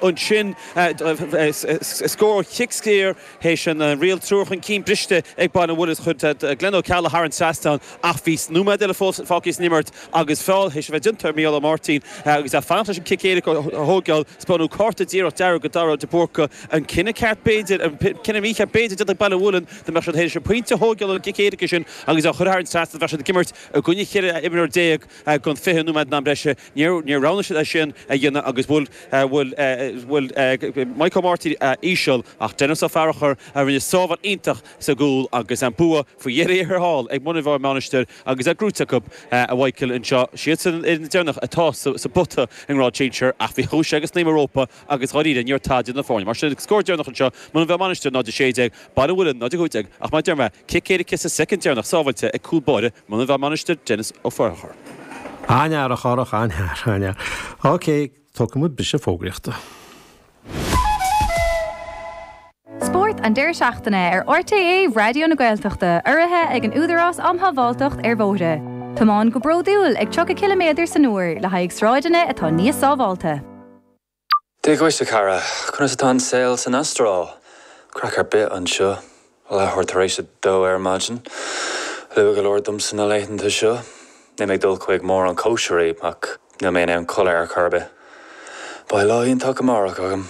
ansin scór cic saor théis an riail triúr chun cinn briste ag Baile an Mhuilinn chuir Glen Ó Ceallaigh thar an trasnán ach bhí nóiméad eile fós fágtha san imirt agus feall théis a bheith déanta ar Micheál Ó Máirtín agus é ag fanacht leis an gcic éirice a thóigeáil. Spáineadh cárta díreach dearg do Dhara de Búrca, an cinneadh ceart b'fhéidir, an cinneadh mícheart b'fhéidir, déanta ag Baile an Mhuilinn dá mbeadh siad théis pointe a thóigeáil ón gcic éirice sin agus é a chur thar an trasnán bheadh siad ag imirt i gcoinne cheithre imreoir déag don fiche nóiméad in am breise. Níor roghnaigh siad é sin a dhéanamh agus bhuail Maidhc Ó Máirtín íseal ach Denis Ó Fearchair a rinne sábháil iontach sa gcúl agus an bua faoi dheireadh thiar thall ag Muine Mheá Mainistir agus é gnóite acu. A Mhaidhcil, anseo, siadsan iad na deireanacha atá sa bpota i ngrád sinsir ach bhí chúis agus snaidhm Europa agus dháiríre ní raibh tada idir na foirne. Mar sin, scór deireanach anseo, Muine Mheá Mainistir 0-16, Baile an Mhuilinn 0-15, ach mar a deir mé, cic éirice sa soicind deireanach sábháilte ag cúl báire Muine Mheá Mainistir Denis Ó Fearchair. An-fhear, a Chárthach, an-fhear, an-fhear. OK, tógfaidh muid briseadh fógraíochta. Spórt an deireadh seachtaine ar RTÉ Raidió na Gaeltachta urraithe ag an Údarás Um Shábháilteacht ar Bhóithre. Tiomáin go bródúil ag 30 ciliméadar san uair le haghaidh sráideanna atá níos sábháilte. Dia dhuit, a chara. Conas atá an saol san Astráil? Craic ar bith anseo. Leathuair tar éis a dó ar maidin. Luath go leor domsa na laethanta seo. Níl mé ag dul chuig mórán cóisirí, ach níl mé in ann codladh ar chor ar bith. Beidh lá iontach amárach agam.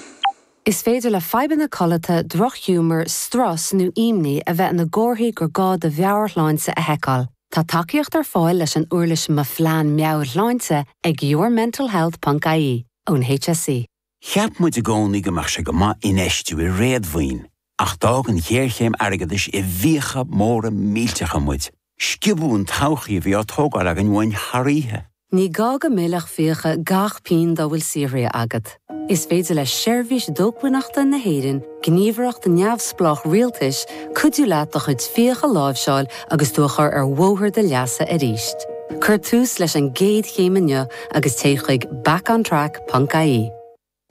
Is féidir le fadhbanna codlata, drochghiúmar, strus nó imní a bheith ina gcomharthaí gur gá do mheabhairshláinte a sheiceáil. Tá tacaíocht ar fáil leis an uirlis Mo Phlean Meabhairshláinte ag yourmentalhealth ponc ie ón HSE. Cheap muid i gcónaí go mbeadh sé go maith infheistiú i réadmhaoin ach d'fhág an ghéarchéim airgeadais i bhfiacha móra millteacha muid. Sciobadh an todhchaí a bhí á tógáil againn uainn thar oíche. Ní gá go millfeadh fiacha gach pingin dá bhfuil saothraithe agat. Is féidir le Seirbhís Dócmhainneachta na hÉireann, gníomhaireacht neamhspleách rialtais, cuidiú leat do chuid fiach a láimhseáil agus tú a chur ar bhóthar do leasa arís. Cuir tús leis an gcéad chéim inniu agus téigh chuig backontrack.ie.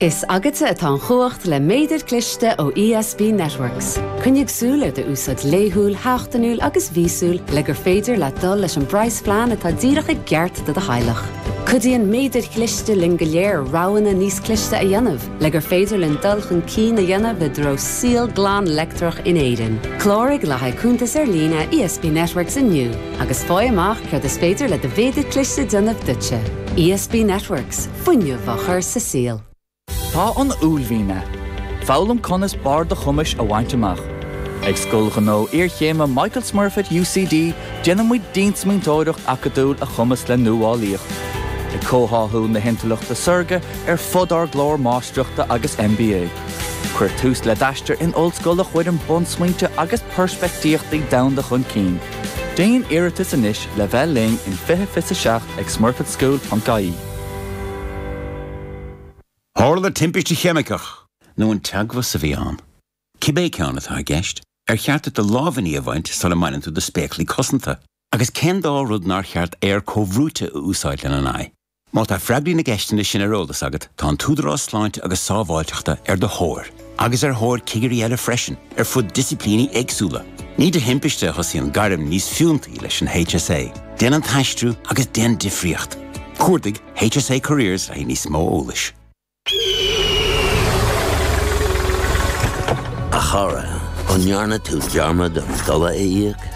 Is agatsa atá an chumhacht le méadar cliste ó ESB Networks. Coinnigh súil ar do úsáid laethúil, sheachtainiúil agus mhíosúil le gur féidir leat dul leis an bpraghasphlean atá díreach i gceart do do theaghlach. Cuidíonn méadair chliste linn go léir roghanna níos cliste a dhéanamh le gur féidir linn dul chun cinn a dhéanamh i dtreo saol glan leictreach in Éirinn. Cláraigh le haghaidh cuntas ar líne ESB Networks inniu agus faigh amach céard is féidir le do mhéadar cliste déanamh duitse. ESB Networks. Fuinneamh á chur sa saol. Tá an uaillmhian ann. Foghlaim conas barr do chumais a bhaint amach. Ag Scoil Ghnó Iarchéime Michael Smurfit UCD déanaimid diansmaointeoireacht acadúil a chumasc le nuálaíocht, ag comhtháthú na hintleachta saorga ar fud ár gclár Máistreachta agus MBA. Cuir tús le d'aistear in ollscoil a chuireann bunsmaointe agus peirspictíochtaí domhanda chun cinn. Déan iarratas anois le bheith linn in 2027 ag smurfitschool.ie. Tharla timpiste cheimiceach. nó an teagmhas a bhí ann. Cibé ceann atá i gceist, ar cheart duit do lámhainní a bhaint sula mbaineann tú do spéaclaí cosanta? Agus cén dá rud nár cheart aer comhbhrúite a úsáid lena n-aghaidh? Má tá freagraí na gceisteanna sin ar eolas agat, tá an tÚdarás Sláinte agus Sábháilteachta ar do thóir. agus ar thóir cigirí eile freisin ar fud disciplíní éagsúla. Ní de thimpiste a thosaíonn gairm níos fiúntaí leis an HSA. Déan an t-aistriú agus déan difríocht. Cuardaigh HSA Careers le níos mó eolais. A chara, an ndearna tú dearmad an dola a íoc?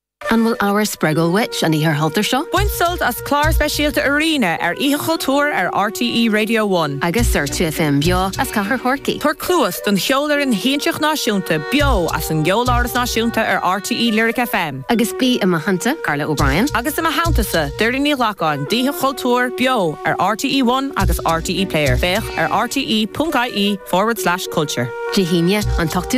An bhfuil ábhar spreagúil uait an Oíche Chultúir seo? Bain sult as clár speisialta Arena ar Oíche Chultúir ar RTÉ Radio One. Agus ar 2FM beo as Cathair Chorcaí. Tabhair cluas don Cheolfhoireann Shiansach Náisiúnta beo as an gCeoláras Náisiúnta ar RTÉ Lyric FM. Agus bí i mo theannta, Carla O'Brien. Agus i mo theanntasa, Doireann Ní Ghlacáin, d'Oíche Chultúir beo ar RTÉ One agus RTÉ Player. Féach ar rte.ie forward slash culture. Dé hAoine, an t-ochtú lá.